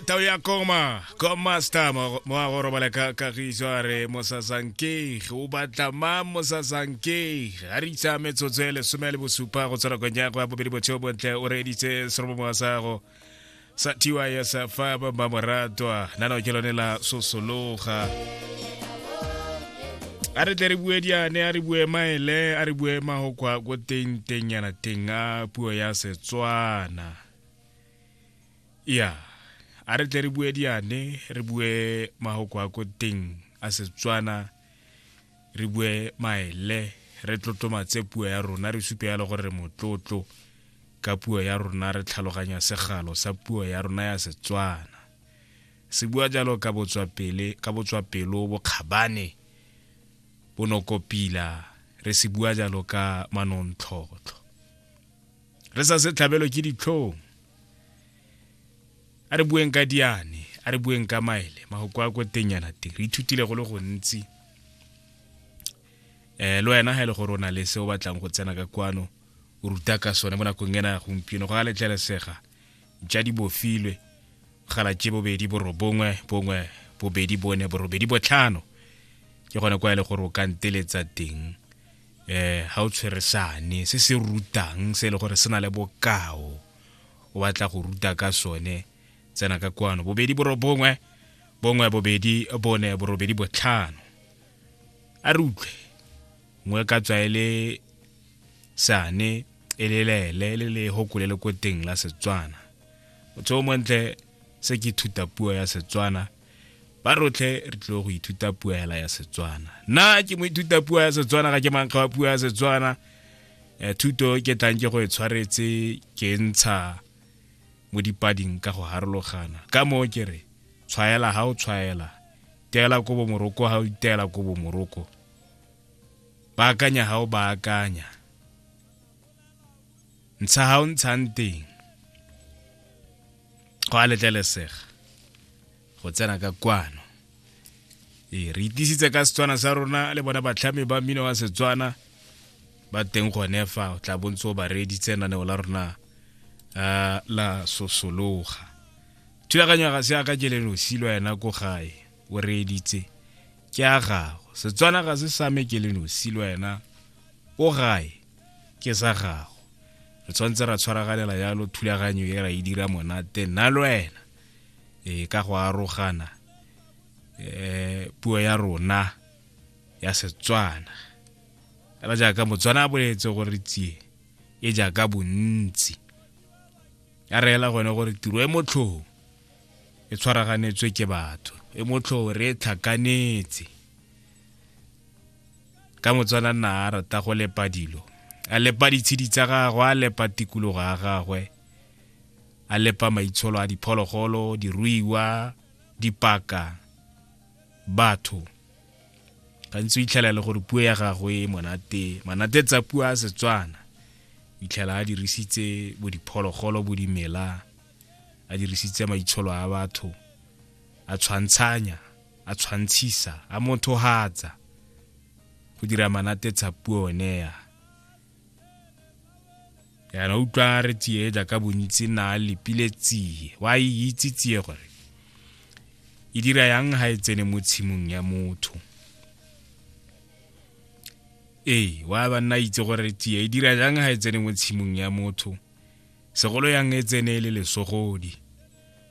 tao ya koma commaster mo a go robala ka kagiso a re mosasankeg o batla ma mosasankeg a re itsa metsotso e lesome le bosupa go tswela kong ya go ya bobedi botsheo bontle o reeditse serobomo wa sago sa tiwa ya sa fa ba ba moratwa nano ke lone la sosologa a re tle re bue diane a re bue maele a re bue mahokwa ko teng teng yana teng a puo ya setswana ya a re tle re bue diane re bue mahoko a ko teng a setswana re bue maele re tlotlomatse puo ya rona re supe yalo gore re motlotlo ka puo ya rona re tlhaloganya segalo sa puo ya rona ya setswana se bua jalo ka botswapele ka botswapelo bokgabane bonokopila re se bua jalo ka manontlhotlho re sa se tlhabelo ke ditlhong a re bueng ka diane a re bueng ka maele magoko a ko tenyana teng re ithutile go le gontsi um le wena ga e le gore o na le se o batlang go tsena ka kwano o ruta ka sone mo nakong ena ya gompieno go a letlelesega ja di bofilwe galatše bobedi borobongwe bongwe bobedi bone borobedi botlhano ke gone kwa e le gore o ka nteletsa teng eh ha o tshwere sane se se rutang se e le gore se na le bokao o batla go ruta ka sone tsena ka kwano bobedi borobongwe bongwe bobedi bone borobedi botlhano a re utlwe ngwe ka tswa e le sane e lelele le le hokole le ko teng la setswana o tse o montle Se ke ithuta puo ya Setswana. Ba rotlhe re tlile go ithuta puo hela ya Setswana. Nna ke mo ithuta puo ya Setswana ga ke mankga wa puo ya Setswana. Eh, thuto ke tlang ke go e tshwaretse ke ntsha mo dipading ka go harologana ka moo ke re tshwaela ga o tshwaela teela ko bomoroko ga o iteela ko bomoroko baakanya ga o baakanya ntsha ga o ntshang teng go a letlelesega go tsena ka kwano ee re itisitse ka setswana sa rona le bona batlhami ba mmino wa setswana ba teng gone fa o tla bontse o ba reeditse naneo la rona uh, la sosologa thulaganyo ya ga se yaka ke lenosi lo yena ko gae o reeditse ke a gago setswana ga se same ke lenosi lo yena ko gae ke sa gago re tshwanetse ra tshwaragalela yalo thulaganyo e ra e dira monate nna le wena e ka go arogana um puo ya rona ya setswana fela jaaka motswana a boletse gore tsie e jaaka bontsi ya reela gone gore tiro e motlhong e tshwaraganetswe ke batho e motlhong re e tlhakanetse ka motswana nna a rata go lepa dilo a lepa ditshedi tsa gagwe a lepa tikologo ya gagwe a lepa maitsholo a diphologolo diruiwa dipaka batho gantsi o itlhela e le gore puo ya gagwe e monate manate tsa puo a setswana o itlhela a dirisitse bo diphologolo bo dimela a dirisitse maitsholo a batho a tshwantshanya a tshwantshisa a mothohatsa go dira manatetsa puo oneya yana utlwa re tsie jaaka bontsi na lepile tsie wa e itse tsie gore e dira yang ga e tsene mo tshimong ya motho ee wa ba nna itse gore tia e dira jang ga e tsene mo tshimong ya motho segolo yang e tsene e le lesogodi